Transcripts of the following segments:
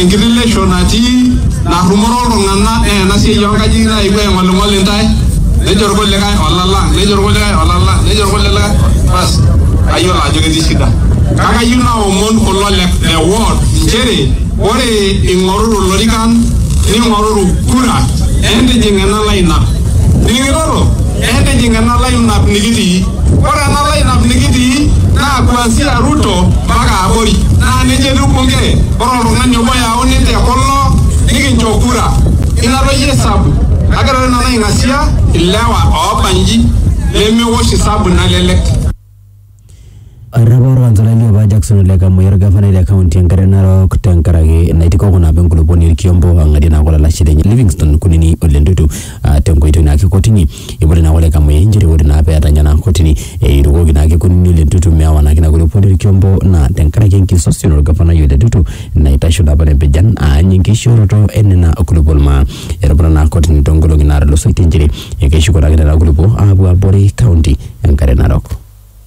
Enkitilisho natii narrumoro iltung'ana naa ena siai oonkajijik naewuo aing'oling'ol intae nejo irkulikae olalang, nejo irkulikae olalang, nejo irkulikae basi kayiolo ajo ketii shida. Kake ayieu naomon kulo le le ward nchere ore ing'oruru ilorikan ning'oruru kura entijing ena line up. Nining'itoto? Entijing ena line up nikitii. Ore ena lineup nikitii naa kuanzia Ruto mpaka abori naa neija etiu bunge. Ore oltung'ani obo oyauni te kulo nikincho kura. Ina toi esabu. Kake ore nanu aing'asia ilewa oobanji lemewosh esabu nalelek. Erripo olkansolai li apa Jackson Ole Kamoi olgafanai le kaunti e Nkare Narok tenkaraki naitikoko naapa enkulupuoni Olkiombo ang'adie naake olalashe lenye Livingstone Kunini Ole Ntutu aa tenkoitoi naake e kotini. Eipotie naake Ole Kamoi nchere ore naa pee etanya naa kotini eirukoki naake Kunini Ole Ntutu meewa naake ina kulupuoni Olkiombo naa tenkaraki enkisosion o lgafanai Ole Ntutu naitasho naa apa te mpijan aany enkishooroto e nena kulupuon maa. Etuputa naa kotini too nkolong'i naatulusoitie nchere ekeshuko naake nena kulupuok aapuo abori kaunti e Nkare Narok.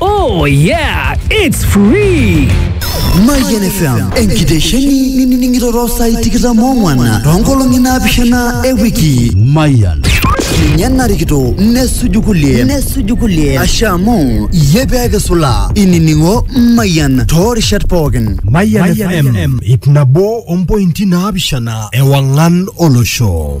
Oh yeah, it's free. Mayian FM enkitesheni nining'iroro saai tikitam ong'wan toonkolong'i naapishana e wiki. Mayian. Ninye narikito nesuju kulie nesuju kulie asha amu iyie pee kisula inining'o Mayian toorishat pookin. Mayian FM ip nabo ompointi naapishana ewang'an olosho.